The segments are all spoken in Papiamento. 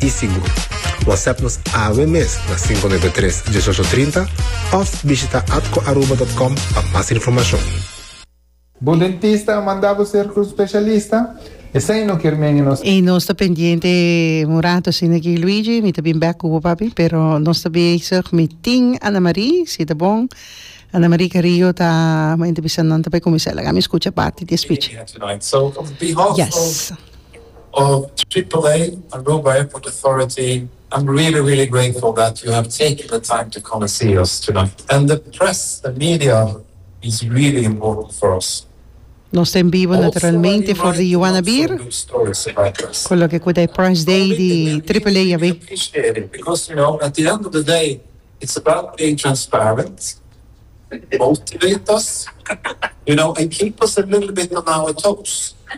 i Singu. Whatsapp nos awe mes na 593 1830 of bishita atcoaruba.com pa mas informacion. Bo dentista a manda bo ser cu specialista? Esey no kier menge nos. Y nos ta pendiente un rato asina aki Luigi, mi ta bin bek cu bo papi, pero nos ta bezig mi tin Ana Marie, si ta bon Ana Marie Carrillo ta a entrevista nan ta bay cuminsa laga mi scucha parti di e speech. Yes. of AAA Aruba Airport Authority I'm really really grateful that you have taken the time to come and see us tonight and the press the media is really important for us. Nos ta en bivo naturalmente for di Juanabir cu loke cu ta e Press Day di AAA a be.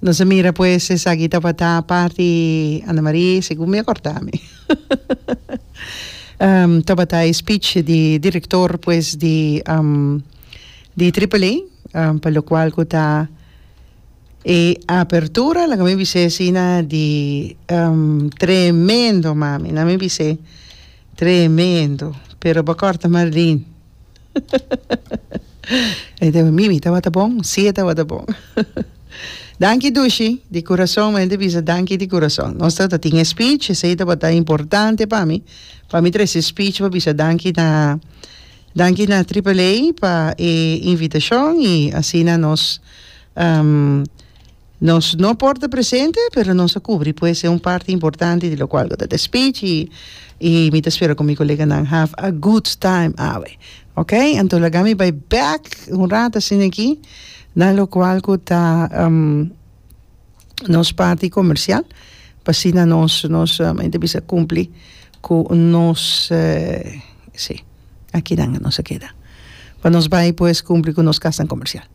Nos a mira pues esaki tabata parti Ana Mari segun mi a corda mi tabata e speech di director pues di di Triple A pa lo cual cu ta e apertura laga mi bis'e asina di tremendo mami nan mi bis'e tremendo pero ba corta maldin. E ta mi mi tabata bon si e tabata bon danki dushi di kurason mi ta bisa danki di kurason nos ta tin e speech esei tabata importante pa mi pa mi trese e speech pa bisa danki na danki na triple a pa e invitashon y asina nos. Nos no por ta presente, pero nos a cubri pues e un parti importante di locual cu ta de speech y y mi ta spera cu mi coleganan have a good time awe. Ok, anto laga mi bay back un rato asina aki na locual cu ta nos parti comercial pa asina nos nos mi ta bisa cumpli cu nos si, aki nan nos a keda pa nos bay pues cumpli cu nos casnan comercial.